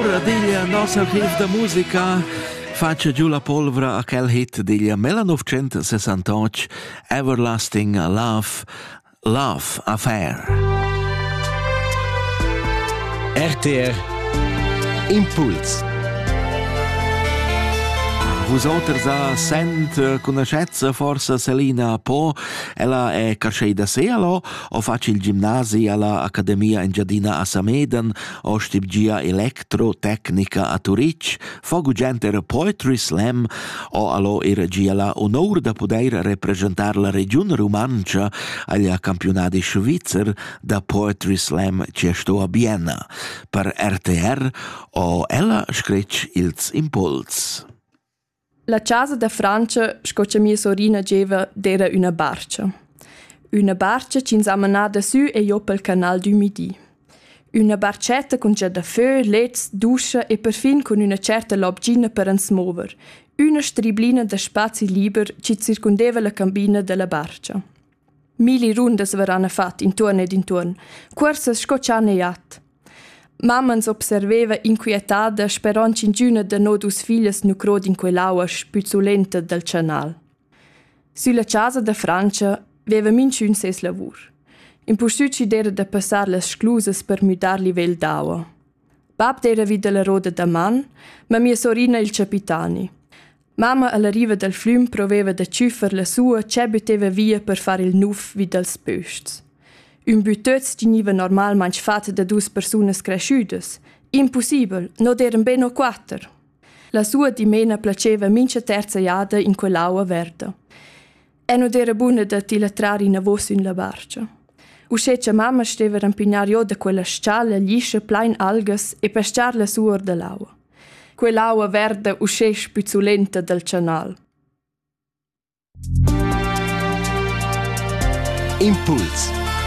Ora diglia nossa chef da musica fatscha giu la polvra a quel hit diglia Mela 968 Everlasting Love Love Affair. RTR Impuls Vusoters a sent eh, conoscezza forse Selina Po, ella è cascei da Sealo, o faci il gimnasi alla Accademia Engiadina a Sameden, ostibgia electrotecnica a Turitg, fa gugent era Poetry Slam o allo era gia la honor da poder representar la regiun rumantscha agl campionadi svizzer da Poetry Slam che sto a Bienna. Per RTR o ella scretg ils impuls. La chasa da Frantscha sco cha mia sorina gieva d'eira üna barcha. Üna barcha chi'ns ha manà dasü e jo pel canal d'ümidi. Üna barchetta cun già dafö, lets, duscha e perfin cun üna tscherta lobgina per ans mover. Üna striblina da spazi liber chi circundeva la cambina da la barcha. Milli rundas veran fat intuorn ed intuorn, cuorsas sco chan e jat. Mamma ens observeva inquietada sperond ch'ingüna da no dus figlias nu crod in quell'aua spüzulenta dal chanal. Sülla casa da Frantscha veva minchün ses lavur. Impustüt schi d'era da passar las sclusas per müdar livel d'aua. Bab d'era vi dalla roda da man, ma mia sorina il capitani. Mamma alla riva dal flüm proveva da tschüffer la sua che bütteva via per far il nuf vi dals bös-chs. Ün bütöz tgniva normalmaing fat da dus persunas creschüdas. Impussibel, non eran be no quatter. La sua dimena placeva mincha terza jada in quell'aua verda. E non era buna da ti la trar inavos in la barcia. Uschè cha mamma steva rampignar giò da quella stgala liscia plain algas e pescar la suor da l'aua. Quell'aua verda uschè spizzulenta dal chanal. Impuls